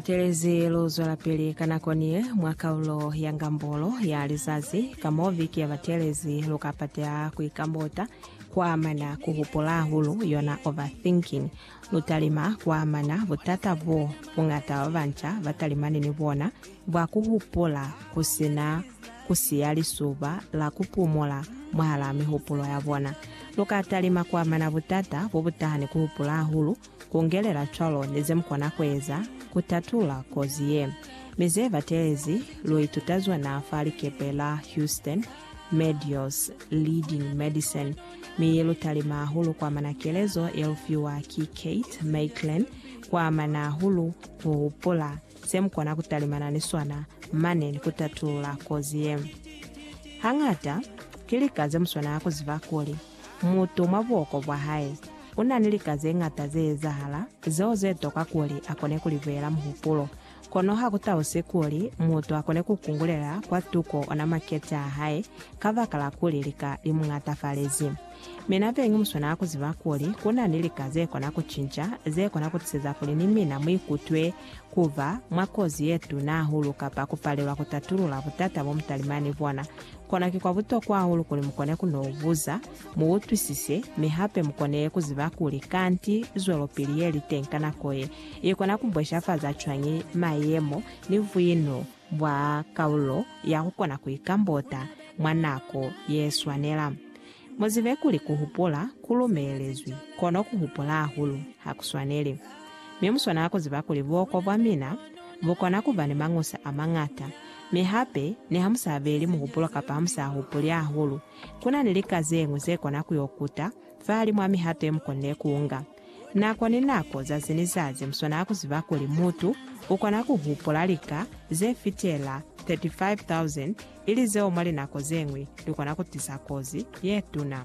Butelezi lu zwelapili ka nako niye mwa kaulo ya ngambolo ya lizazi, ka mo viki ya batelezi lu ka pateha ku ikambota kwa amana ku hupula hahulu, yona overthinking. Lu talima kwa amana butata bo buñata ba banca ba talimani ni bona bwa ku hupula ku si na ku siya lisuba la ku pumula mwahalaa mihupulo ya bona. Lu ka talima kwa amana butata bo bu taha ni ku hupula hahulu, Ku ngelela cwalo ni ze mu kona ku eza ku tatula kozi ye. Mi ze batelezi, lu ituta zona fa likepe la Houston, Medios, Leading Medicine, mi lu talima hahulu ku amana kelezo ye lu fiwa ki Kate Maitland ku amana hahulu ku hupula se mu kona ku talimana ni sona mane ni ku tatula kozi ye. Hañata, ki lika ze mu swanela ku ziba kuli, Mutu mwa buhoko bwa hae u na ni lika ze ñata ze ezahala zeo ze toka kuli a kone ku li buyela muhupulo. Kono ha ku talusi kuli mutu a kone ku kungulela kwa tuko ona makete a hae kabakala kuli lika li mu ñatafalezi. Mi na beñi mu swanela ku ziba kuli ku na ni lika ze kona ku cinca, ze kona ku tiseza kuli ni mina mu ikutwe ku ba mwa kozi ye tuna hahulu kapa ku palelwa ku tatulula butata bo mutalima ni bona, kona ki kwa butokwa hahulu kuli mu kone ku n'o buza, mu utwisise, mi hape mu kone ku ziba kuli kanti zwelopili ye li teñi ka nako ye, i kona ku bweshafaza cwañi mayemo ni buino bwa kaulo ya ku kona ku ikambota mwa nako ye swanela. Muzibe kuli kuhupula ku lumelezwi, kono kuhupula hahulu ha ku swaneli. Mi muswanela kuziba kuli buoko bwa mina bukona kuba ni mañusa amañata, mi hape niha musaabeli muhupulo kapa hamusaahupuli hahulu, kuna ni lika zeñwi zekona kuyo kuta fahalimu ami hape mukonile kuunga. Nako ni nako, zazi ni zazi, muswanela kuziba kuli mutu ukona kuhupula lika zefitela 35,000 ili zeo mwa linako ze ñwi li kona ku tisa kozi ye tuna.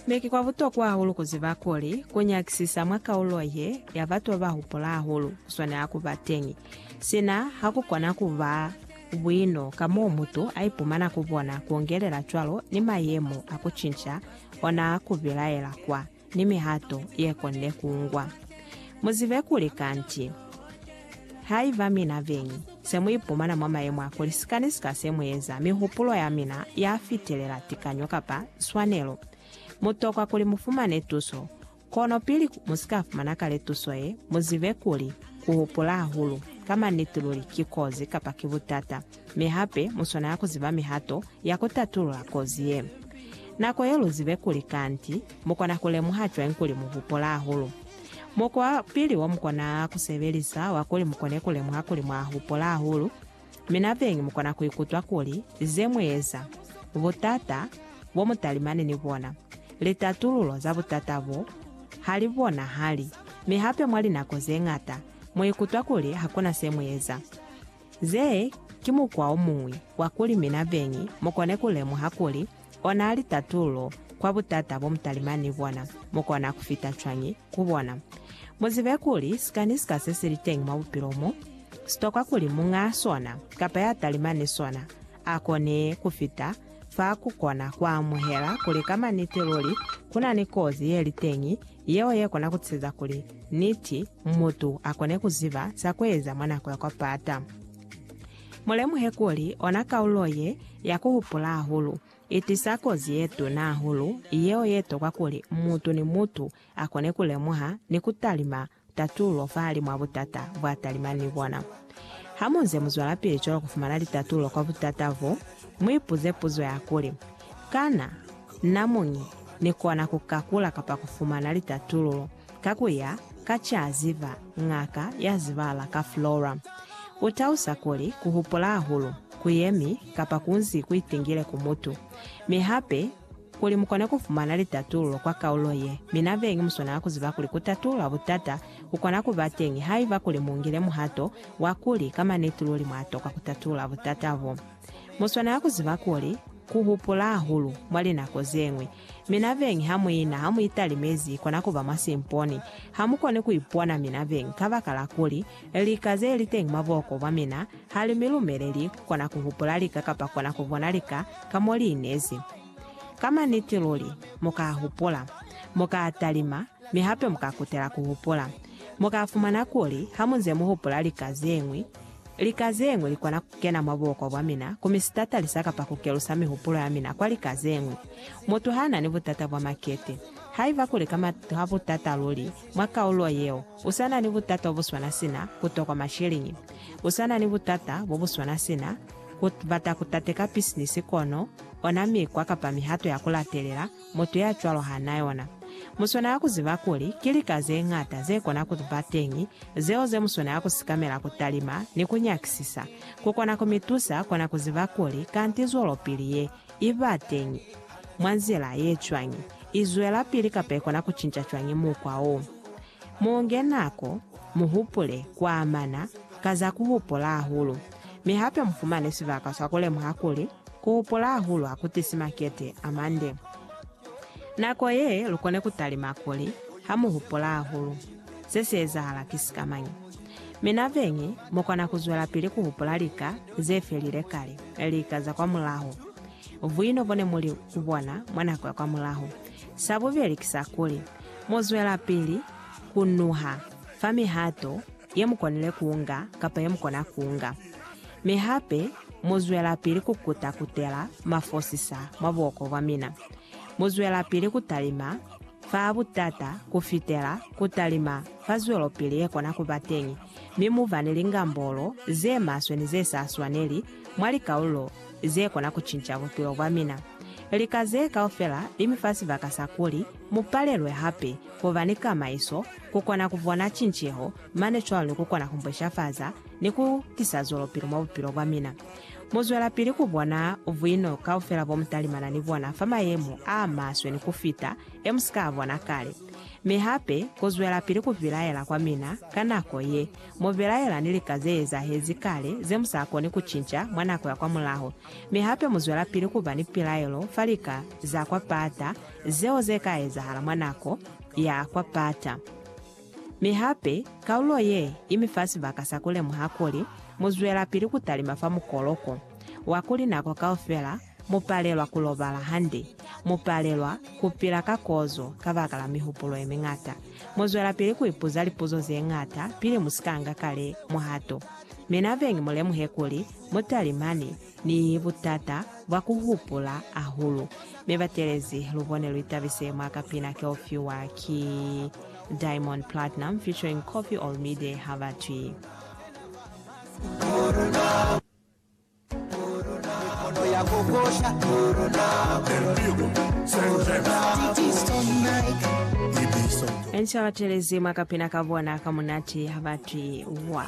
Mi ki kwa butokwa hahulu ku ziba kuli, ku nyakisisa mwa kaulo ye ya batu ba ba hupula hahulu ku swanela ku ba teñi. Sina ha ku kona ku ba buino ka mo mutu a ipumana ku bona, ku ongelela cwalo ni mayemo a ku cinca ona ku bilaela kwa. ni mihato ye konde ku ngwa. Mu zibe kuli kanti, haiba mina beñi se mu ipumana mwa mayemo a kuli sika ni sika se mu eza mihupulo ya mina ya fitelela tikanyo kapa swanelo, mu tokwa kuli mu fumane tuso. Kono pili mu si ka fumana kale tuso ye, mu zibe kuli ku hupula hahulu ka maniti luli ki kozi kapa ki butata. Mi hape mu swanela ku ziba mihato ya ku tatulula kozi ye. Nako ye lu zibe kuli kanti mu kona ku lemuha cwañi kuli mu hupola hahulu. Mukwa wa pili wo mu kona ku sebelisa wa kuli mu kone ku lemuha kuli mwa hupola hahulu, mi nabeñi mu kona ku ikutwa kuli ze mu eza, butata bo mu talimani ni bona, litatululo za butata bo, ha li bonahali. Mi hape mwa linako ze ñata mu ikutwa kuli ha ku na se mu eza. Ze ki mukwa o muñwi wa kuli mina beñi mu kone ku lemuha kuli ona li tatulo kwa butata bo mutalimani ni bona mu kona ku fita cwañi ku bona. Mu zibe kuli sika ni sika se si li teñi mwa bupilo mo, si tokwa kuli muñ'a sona kapa ya talimani ni sona a kone ku fita fa ku kona ku amuhela kuli ka maniti luli ku na ni kozi ye li teñi yeo ye kona ku tisa kuli niti mutu a kone ku ziba za ku eza mwa nako ya kwa pata. Mu lemuhe kuli ona kaulo ye ya ku hupula hahulu i tisa kozi ye tuna hahulu yeo ye tokwa kuli mutu ni mutu a kone ku lemuha ni ku talima Tatulo fahali mwa butata bwa talimani ni bona. Hamunze muzwelapili cwalo kufumana litatulo kwa butata bo, muipuze puzo ya kuli, Kana na muñi nikona kukakula kapa kufumana litatululo ka kuya ka caziba ñaka ya zibahala ka Flora? Utalusa kuli kuhupula hahulu kuyemi kapa kunzi kuitingile ku mutu, mi hape Kuli mukone kufumana litatululo kwa kaulo ye, mi nabeñi muswanela kuziba kuli kutatulula butata kukona kuba teñi haiba kuli mungile muhato wa kuli ka maniti luli mwatokwa kutatulula butata bo. Muswanela kuziba kuli kuhupula hahulu mwa linako zeñwi, mi nabeñi hamuina hamuitalimezi ikona kuba mwa simponi. Hamukoni kuipona mi nabeñi kabakala kuli Lika ze li teñi mwa buhoko bwa mina ha li mi lumeleli ku kona ku hupula lika kapa kona ku bona lika ka mo li inezi. Ka maniti luli, mu ka hupula. Mu ka talima, mi hape mu ka kutela ku hupula. Mu ka fumana kuli ha mu nze mu hupula lika ze ñwi, lika ze ñwi li kona ku kena mwa buhoko bwa mina ku mi sitatalisa kapa ku kelusa mihupulo ya mina kwa lika ze ñwi. Mutu ha na ni butata bwa makete. Haiba kuli ka maniti ha butata luli mwa kaulo yeo, U sa na ni butata bo bu swana sina ku tokwa masheleñi. U sa na ni butata bo bu swana sina ku bata ku tateka bisinisi kono ona mikwa kapa mihato ya ku latelela mutu ya cwalo ha na yona. Mu swanela ku ziba kuli ki lika ze ñata ze kona ku ba teñi zeo ze mu swanela ku sikamela ku talima ni ku nyakisisa. Ku kona ku mi tusa kona ku ziba kuli kanti zwelopili ye i ba teñi mwa nzila ye cwañi, i zwelapili kapa i kona ku cinca cwañi mukwa wo. Mo nge nako, mu hupule ku amana ka za ku hupula hahulu, mi hape mu fumane sibaka sa ku lemuha kuli ku hupula hahulu ha ku tisi makete a mande. Nako ye, lu kone ku talima kuli, Ha mu hupula hahulu, se si ezahala ki sikamañi? Mi nabeñi, mu kona ku zwelapili ku hupula lika ze felile kale, lika za kwamulaho. Buino bo ne mu li ku bona mwa nako ya kwamulaho. Sa bubeli ki sa kuli, mu zwelapili ku nuha fa mihato ye mu konile ku nga kapa ye mu kona ku nga. Mi hape mu zwelapili ku kuta-kutela mafosisa mwa buhoko bwa mina. Mu zwelapili ku talima fa butata ku fitela ku talima fa zwelopili ye kona ku ba teñi, mi mu ba ni lingambolo ze maswe ni ze sa swaneli mwa likalulo ze kona ku cinca bupilo bwa mina. Lika ze kaufela li mi fa sibaka sa kuli mu palelwe hape ku ba ni kamaiso, ku kona ku bona cinceho, mane cwalo ni ku kona ku mbweshafaza ni ku tisa zwelopili mwa bupilo bwa mina. Mu zwelapili ku bona buino kaufela bo mu talimana ni bona fa mayemo a maswe ni ku fita e mu si ka a bona kale. Mi hape ku zwelapili ku bilaela kwa mina ka nako ye Mu belaela ni lika ze ezahezi kale ze mu sa koni ku cinca mwa nako ya kwa mulaho, mi hape mu zwelapili ku ba ni pilaelo fa lika za kwa pata zeo ze ka ezahala mwa nako ya kwa pata. Mi hape, kaulo ye i mi fa sibaka sa ku lemuha kuli mu zwelapili ku talima fa mukoloko wa kuli nako kaufela Mu palelwa ku lobala hande. Mu palelwa ku pila ka kozo kabakala mihupulo ye miñata. Mu zwelapili ku ipuza lipuzo ze ñata pili mu si ka nga kale muhato. Mi nabeñi mu lemuhe kuli mu talimani ni butata bwa ku hupula hahulu. Mi batelezi, lu bone lu itabise mwa ka pina ke u fiwa ki Diamond Platnum featuring Koffi Olomide ha ba twi. Enca batelezi mwa kapina ka bona ka munati ha batwi wa.